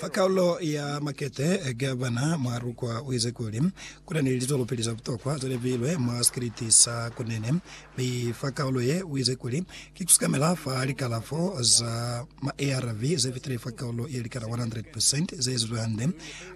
Fa kalulo ya makete gavana Mwarukwa uize kuli, Kuna ni litulo pili za butokwa zalipilwe mwa sikiliti sa Kunene, mi fa kalulo ye uize kuli, Ki kusikamela fa likalafo za ma ARV zefitile fa kalulo yelikana 100 percent zeezizwe hande,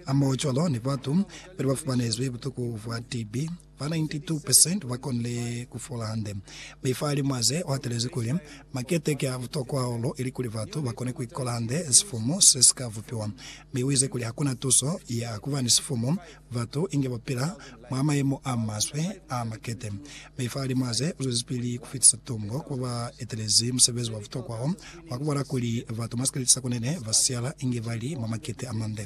hamoho cwalo ni batu bali bafumanezwi butuku bwa TB. Ba 92 percent ba konile ku fola hande. Mifa ili mwa ze hatelezi kuli, Makete ki a butokwa hahulu ilikuli batu ba kone ku ikola hande sifumu se si ka bupiwa. Mi uize kuli hakuna tuso ya kuba ni sifumu, batu inge ba pila mwa mayemo a maswe a makete. Mifa ili mwa ze zwezipili ku fitisa tungo ku ba ba etelezi musebezi wa butokwa wo, wa ku bola kuli batu mwa sikeleti sa kunene ba siala inge ba li mwa makete a mande.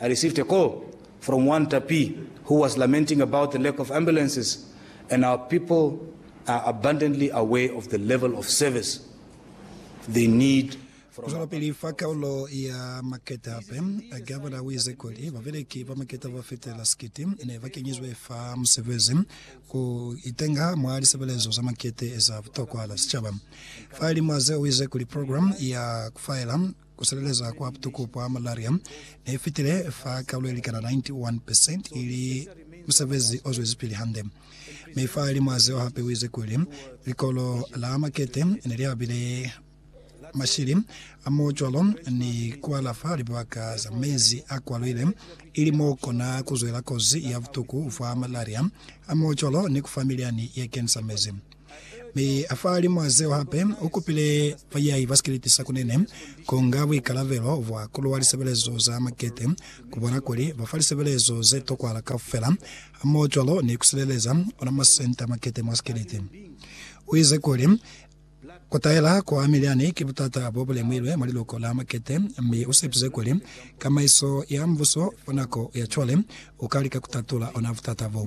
I received a call from one Tapi who was lamenting about the lack of ambulances and our people are abundantly aware of the level of service they need from Ku zwelapili fa kaulo ya maketa hape, Gavana u ize kuli babeleki ba maketa ba fetela sikiti ne ba kenyizwe fa musebezi ku itenga mwa lisebelezo za makete za butokwa za sicaba. Fa limo ze u ize kuli program ya ku faela Ku silelezwa kwa butuku bwa malaria ne fitile fa kalulo ilikana 91%, ili musebezi o zwezipili hande. Mi fa limwa zeo hape uize kuli, Likolo la makete ne li abile mashili a mo cwalo ni ku alafa libaka za mezi a kwaluile, ili mo kona ku zwela kozi ya butuku bwa malaria a mo cwalo ni ku fa milyani ye kenisa mezi. Mi afahalimwaa zeo hape, ukupile bayai ba sikeleti sa kunene kunga buikalabelo bwa kuluwa lisebelezo za makete, kubona kuli bafa lisebelezo zetokwahala kaufela, hamohocwalo ni kusileleza ona masenta a makete mwa sikeleti. Uize kuli, Kutaela kwa milyani ki butata bobulemuilwe mwa liluko la makete, mi usepize kuli tsamaiso ya mbuso fa nako ya cwale ukalika kutatula ona butata bo.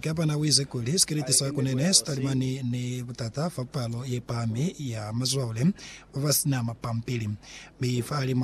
Gavana u ize kuli sikiliti sa kune ne si talimani ni butata fa palo ye pahami ya mazwaule ba ba si na mapampili, mi fa lima